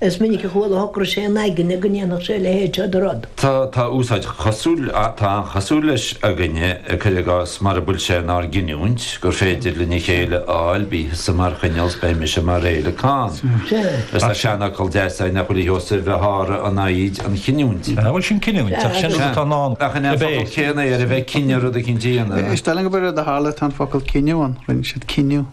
Is minic a chuala shocraigh sé ina aigne go ndéanfadh sé a leithéid seo de rud. Tá tá úsáid chosúil, tá an-chosúil leis, againne, cuir i gcás, mara bhfuil sé inár gcinniúint gur féidir linn a chéile a fháil, bí thusa mar choinneal 's beidh mise mar fhéileacán. Is tá seanfhocal deas againn nach bhfuil a fhios ar bith sháraigh an fhoighid an chinniúint. An bhfuil sin cinniúint? Ach sin rud atá i ndán Ach an é an a focal bheith. céanna é ar a bheith cinneadh rud eicínt a dhéanamh? Is dóigh liom gur rud a tharla tá an focal cinneadh ann, rinne siad cinneadh.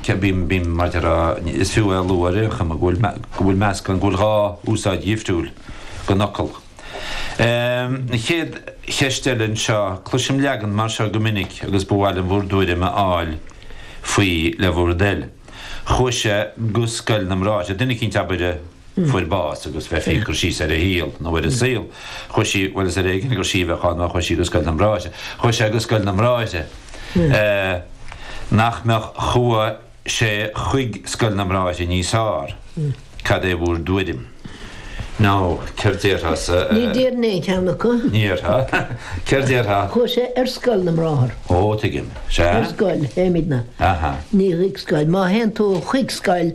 Cia bím bím maidir a Is fiú é a lua ar aon chuma go bhfuil go bhfuil meascán go bhfuil dhá úsáid dhifriúil den fhocal. An chéad cheist eile anseo, cloisim leagan mar seo go minic agus ba mhaith liom bhur dtuairim a fháil faoi le bhur dtoil. Chuaigh sé go scoil na mbráithre. Duine eicínt, abair, a. fuair bás agus bheifí ag cur síos ar a shaol nó ar a saol, chuaigh sí, bhuel is ar éigean gur sí a bheadh ann má chuaigh sí go Scoil na mBráithre, chuaigh sé go Scoil na mBráithre, nach mbeadh, chuaigh sé chuig Scoil na mBráithre níos fearr, cad é bhur dtuairim? nó céard déarfá-sa? Ní déarfainn aon cheann acu. Ní déarfá. Céard déarfá? Chuaigh sé ar Scoil na mBráthar. Ó, tuigim. Sea. Ar scoil, a deirimidne. Aha. Ní chuig scoil. Má théann tú chuig scoil,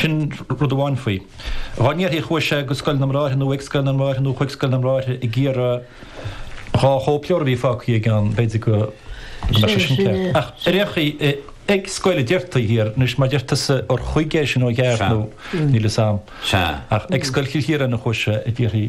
Sin rud amháin faoi. Dhá ndéarfaí chuaigh sé go Scoil na mBráithre nó ag Scoil na mBráithre nó chuig Scoil na mBráithre ag iarraidh dhá chóipleabhar a bhí fágtha aige ann, b'fhéidir go mbeadh sé sin ceart. Ach ar aon chaoi, ag scoil a deirtí thiar, anois má deir tusa gur chuig é sin ó cheart nó níl 'fhios a'm. Ach ag Scoil Chill Chiaráin a chuaigh sé a déarfaí.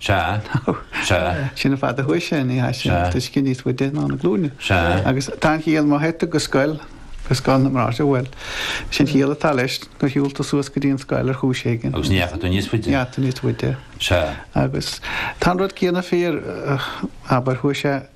Sea. Sea. Sin an fad a chuaigh sé, ní théann sé san, Sea. uisce níos faide ná na glúine. Sea. Agus tá an chiall, má théid tú go scoil, go scoil na mBráithre, bhuel, sin an chiall atá leis, gur shiúil tú suas go dtí an scoil ar chúis éigin. Agus ní dheachaigh tú níos faide. Ní dheachaigh tú níos faide. Sea. Agus tá an rud céanna fíor, abair, chuaigh sé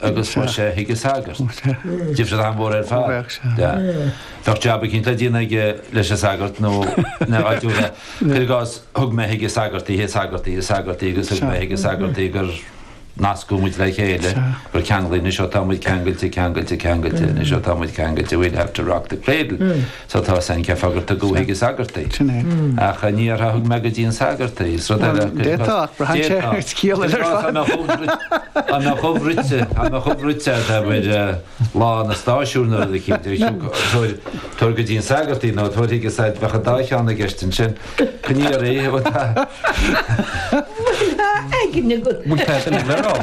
agus chuaigh sé chuig an sagart. Difread an-mhór ar fad. Bheadh jab eicínt le déanamh aige leis an sagart nó ina áitiúla. Cuir i gcás, thug mé chuig an sagart í, an sagart í, an sagart í agus thug mé chuig an sagart í gur nascadh muid le chéile, gur ceanglaíodh muid, is ó tá muid ceangailte, ceangailte, ceangailte, anois ó tá muid ceangailte, we'll have to rock the cradle. Sea, tá sin ceart sagart i gCo. Chuig an sagart í. Sin é. Ach dá ndéarfá thug mé go dtí an sagart í. Is rud eile é. D'fhéadfadh, ach braitheann sé ar chiall ar fad. Dá mbeadh ubh bhruite, dá mbeadh ubh bhruite ar lá na stáisiún nó rud eicínt. Tabhair go dtí an sagart í nó tabhair chuige í, bheadh an dá cheann i gceist ansin. Pinéirí a bhfuil a. Bhfuil i d'aigne agat. Bhfuil a aigne le rá.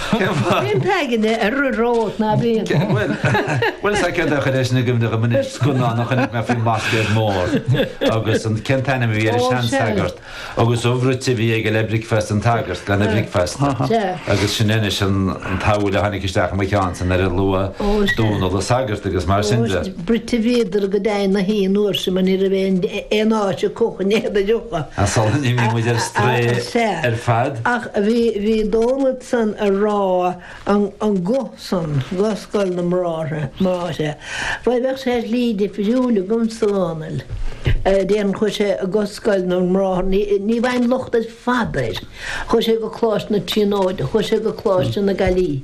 Cén fáth? Bíonn a aigne ar a rós ná bíonn. Bhuel, bhuel is ait gur chuir sé sin i gcuimhne dom anois, scannán a chonaic mé faoin mBlascaod Mór agus an, cén t-ainm a bhí air, an seansagart agus ubh bhruite a bhí aige le bricfeast an tsagairt lena bhricfeasta agus sin anois an tsamhail a tháinig isteach i mo cheann ansan nuair a luaigh Dónall an sagart agus mar sin de. bruite bhíodar go deimhin na haon uair sin mar ní raibh aon aon áit a codh in éadan leofa. An sular imigh muid ar strae Sea. ar fad. Ach bhí, bhí Dónall ansan ag rá an, an go san, go Scoil na mBráithre, mbráithre. Bhuel bheadh sé shlí difriúil agamsa, a Dhónaill. Déarfainn chuaigh sé go Scoil na mBráithre, ní, ní bhfaighinn locht ar fad air. Chuaigh sé go Coláiste na Tríonóide, chuaigh sé go Coláiste na Gaillimhe.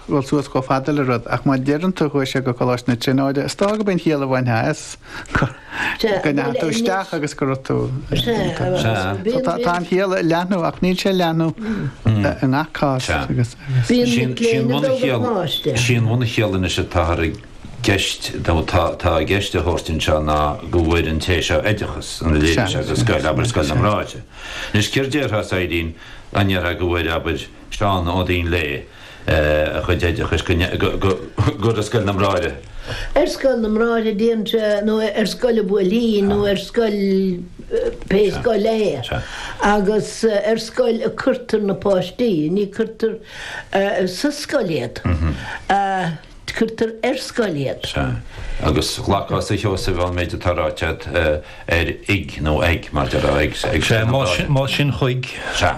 dhul suas chomh fada le rud, ach má deireann tú chuaigh sé go Coláiste na Tríonóide, is dócha gurb í an chiall a bhainfí as go ndeachaigh tú isteach agus go raibh tú. So tá tá an chiall ag leathnú ach níl sé ag leathnú i ngach cás agus agus. Sin sin bhunchiall sin bhunchiall anois atáthar i gceist nó atá atá i gceist a thabhairt anseo ná go bhfuair an té seo oideachas ina leithéid seo de scoil abair scoil na mBráithre. Anois céard déarfása Éirínn an ndéarfá go bhfuair abair Seán nó Dónall a chuid oideachais go ar scoil na mBráithre. Ar scoil na mBráithre déarfainnse nó ar scoil an Bhuailtín nó ar scoil, pé scoil é, agus ar scoil a cuirtear na páistí, ní cuirtear sa scoil iad, cuirtear ar scoil iad. Sea. Agus ghlacfása a Sheosaimh an méid atá ráite agat ar ag nó ag mar déarfá ag scoil na mBráithre. Sea, más sin chuig. Sea.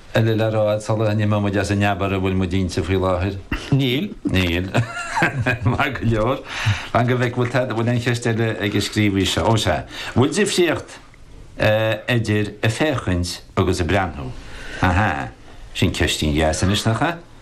eile le rá agat sula n-imeoidh muid as an abairt a bhfuil muid inti faoi láthair? Níl. Níl. Maith go leor. Fan go bhfeice, bhfuil tada, bhfuil aon cheist eile ag an scríobhaí seo? Ó sea. Bhfuil difríocht idir 'a' féachaint agus 'a' breathnú'? Ahá. Sin ceistín dheas anois, nach ea?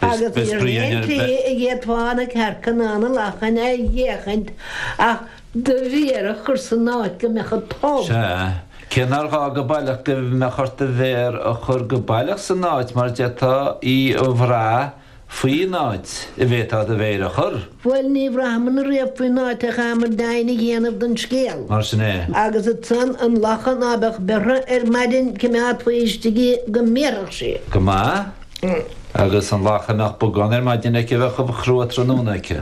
Agus ní raibh aon tslí a fhéadfá na cearca ná na lachain a fhéachaint ach do mhéar a chur san áit go mbeadh an t-ubh. Sea, cé nár ghá go baileach go mbeadh ort do mhéar a chur go baileach san áit mar d'fhéadfá í a bhrath faoin áit a bhféadfá do mhéir a chur. Bhuel ní bhraitheamar riamh faoin áit chaitheamar deimhin a dhéanamh don scéal. Mar sin é. Agus ansan an lacha ná beadh beirthe ar maidin coimeádfaí istigh í go mbéarfadh sí. Go maith. Agus an lacha a mbeadh bogán ar maidin aici a bheadh ubh chrua tráthnóna aici.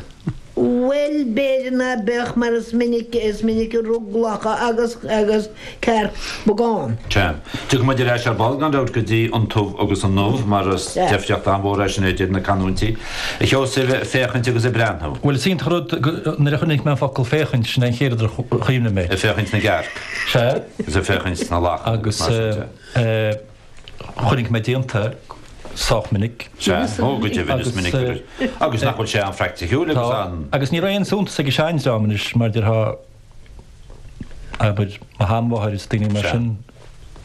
Bhuel b'fhéidir ná beadh mar is minic, is minic a rug lacha agus, agus. Cearc. Bogán. Ceart. Tiocfaidh muid ar ais ar ball, gan dabht, go dtí an t-ubh agus an ubh, mar is deifríocht an-mhór é sin idir na canúintí, a Sheosaimh, ag féachaint agus ag breathnú. Bhuel, is iontach an rud go, nuair a chonaic mé an focal féachaint, sin é an chéad rud ar chuimhnigh mé. Ag féachaint na gcearc. Sea. Is ag féachaint na lacha agus mar sin de. Agus chonaic mé déanta sách minic. Sea. Ó, go deimhin, is minic. Agus nach bhfuil sé an-phraicticiúil agus an. Agus ní raibh aon suntas ag an seandream anois, mar déarfá, abair, mo sheanmháthair is daoine mar sin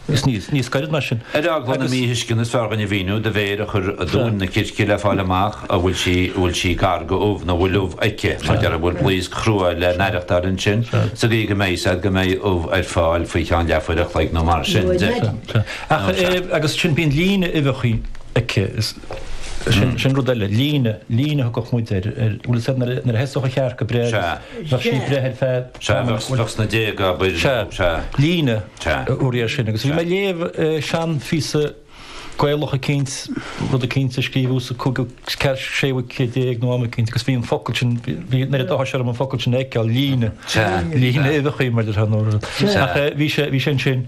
is níos gaire ná sin. Ar eagla na míthuisceana is fearr dhúinn a mhíniú do mhéir a chur i dtóin na circe le fáil amach an bhfuil sí bhfuil sí gar go ubh nó bhfuil ubh aici, mar deir an bhfuil blaosc chrua le n-aireachtáil ansin sa gcaoi go mbeidh sé go mbeidh ubh ar fáil faoi cheann leathuair a chloig nó mar sin de. Ach agus sin bíonn líne uibheacha aici is sin rud eile, líne, líne a thugadh muid ar bhfuil sé nuair a thosódh an chearc ag breith agus. Bheadh sí ag breith ar feadh tamaill. Sea, bheadh sna déaga, abair. Sea. Sea. Líne a thabharfaí air sin. Agus bhí mé ag léamh seanphíosa Gaeilge eicínt, rud eicínt a scríobhadh sa 15ú, 16ú céad nó am eicínt agus bhí an focal sin, bhí an oiread áthais orm an focal sin a fheiceáil, líne. Sea. Líne uibheachaí mar a déarfadh muid. Sea. Ach bhí sé ansin.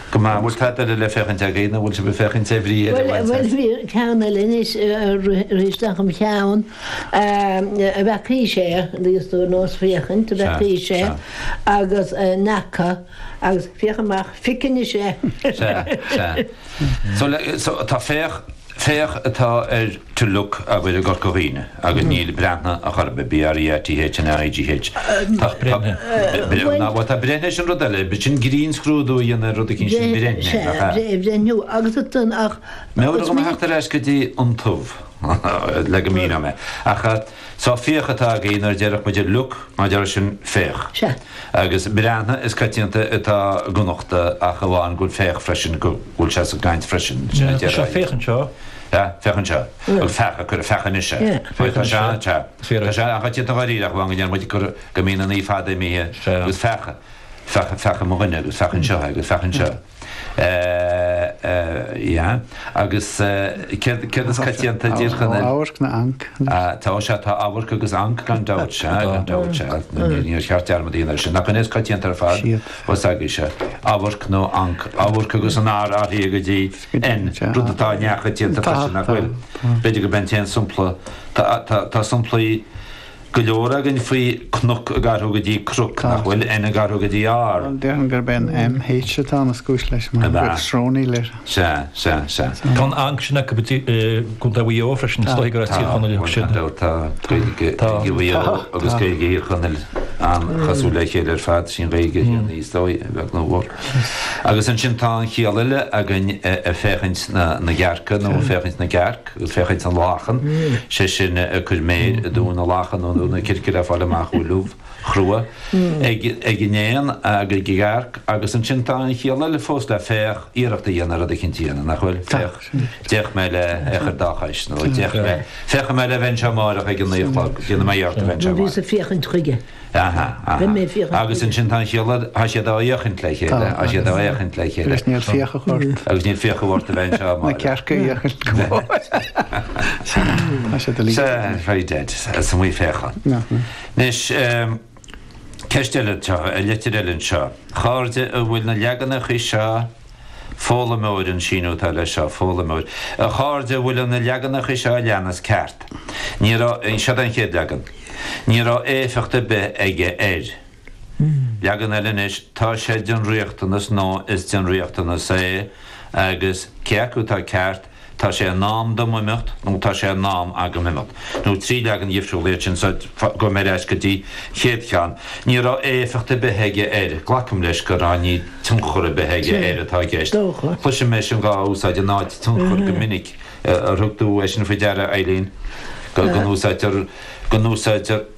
Go maith, an bhfuil tada eile le féachaint agat, nó an bhfuil sibh ag féachaint ar bhrí eile a bhaint as? Bhuel, bhí ceann eile anois a rith isteach i'm cheann, an bhfeaca sé, éist nós féachaint an bhfeaca sé agus n'fheaca agus féach amach, fic anois é! Sea, sea. So, tá féach. Féach atá ar to look agaibh i gCorca Dhuibhne agus níl breathnaigh a chor ar bith, B-r-e-a-t-h-n-a-i-g-h. Tá breathnaigh, bhuel tá breithnigh sin rud eile, sin grinnscrúdú a dhéanamh ar rud eicínt, sin breithnigh, nach ea? Sea, Breithniú agus ansan ach. Meabhraigh dom a theacht ar ais go dtí an t-ubh le go míneoidh mé ach. So féach atá againn nuair a déarfadh muid look mar a déarfadh sin féach. Sea. Agus breathnaigh is coitianta atá i gConnachta ach amháin go bhfuil féach freisin, go bhfuil sé sa gcaint freisin, sin a déarfá. Sea, féach anseo. Sea, féach anseo. Agus feach ag cur, feach anois é. Sea, féach anseo. Tá sé an, sea. Tá sé an-choitianta dháiríre ach amháin go ndéarfadh muid cur, go mbíonn an 'é' fada imithe agus feach, feach, feach mo dhuine agus feach anseo é agus feach anseo. yeah, agus céard céard is coitianta i dTír Chonaill. Tá amharc ná anc anois. Tá, ó sea, tá amharc agus anc, gan dabht, sea, gan dabht, sea, níor cheart dearmad a dhéanamh air sin. Nach in é is coitianta ar fad? Sea. Bhuel, s'agaibh, sea, amharc nó anc, amharc agus an R ag athrú go dtí N, rud atá neamhchoitianta freisin, nach bhfuil? B'fhéidir gurb é an t-aon sampla, tá, tá, tá samplaí, go leor againn faoi cnoc ag athrú go dtí croc, nach bhfuil N ag athrú go dtí R. Bhuel, déarfainn gurb é an M, H atá ina chúis leis, mar An ea? bheadh srónaíl air. Sea, sea, sea. Tá an Ankh sin acu i gContae Mhaigh Eo freisin, is dóigh gur as Tír Tá, Chonaill bhuel, sin. tá, bhuel, tá Gaeilge, Tá. Gaeilge Mhaigh Eo Tá, agus tá. Gaeilge Thír Chonaill an-chosúil le chéile ar fad, sin Gaeilge chéanna is dóigh, a bheag nó a mhór. Agus ansin tá an chiall eile againn eh, eh, féachaint na, na gcearca nó féachaint na gcearc. féachaint na lachan, sé sin cur méir i dtóin na lachan nó i dtóin na circe le fáil amach go bhfuil ubh chrua ag an éan ag an gcearc agus ansin tá an chiall eile fós le féach iarracht a dhéanamh rud éicint a dhéanamh, nach bhfuil? Féach, d'fhéach mé le fáil dá chois nó d'fhéach mé, féachfaidh mé le bheith anseo amárach ag a naoi a chlog, déanfaidh mé iarracht a bheith anseo amárach. Bhíos ag féachaint chuige. Aha, aha. Agus ansin tá an chéile, tá siad á fhéachaint le chéile, tá siad á fhéachaint le chéile. Agus níl fiacha ort. Agus níl fiacha ort a bheith anseo, Máire. Na cearca a fhéachaint go mór. Tá siad uilig. Sea, very dead, as an Mhaigh Féachann. Anois, ceist eile anseo, litir eile anseo. A chairde an bhfuil na leaganacha seo. Foghlaimeoir, an síniú atá leis seo, foghlaimeoir. A chairde, an bhfuil na leaganacha seo a leanas ceart? Ní raibh, seo é an chéad leagan. Ní raibh éifeacht ar bith aige air. Leagan eile anois, Tá sé den riachtanas nó is den riachtanas é agus cé acu atá ceart? Tá sé in am dom imeacht nó Tá sé in am agam imeacht, now trí leagan dhifriúla iad sin, so gabhfaidh mé ar ais go dtí an chéad cheann. Ní raibh éifeacht ar bith aige air, glacaim leis gur ní raibh tionchar ar bith aige air atá i gceist. Dócha. Cloisim é sin dhá úsáid in áit tionchar go minic. Ar thug tú é sin faoi deara, a Eibhlín, go n-úsáidtear, go n-úsáidtear.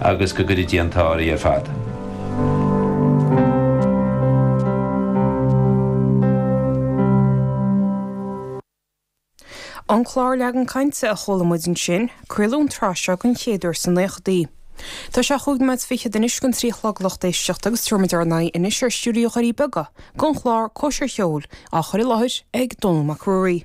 agus go gcuirfidh Dia an t-ádh uirthi ar fad. An clár Leagan Cainte a chuala muid ansin, craoladh an tsraith seo den chéad uair sna naochadaí. Tá sé chúig nóiméad fichead anois chun a trí a chlog lucht éisteachta agus tabharfaidh muid ár n-aghaidh anois ar Stiúideo Dhoirí Beaga gon chlár Cóisir Cheoil á chur i láthair ag Dónall Mac Ruairí.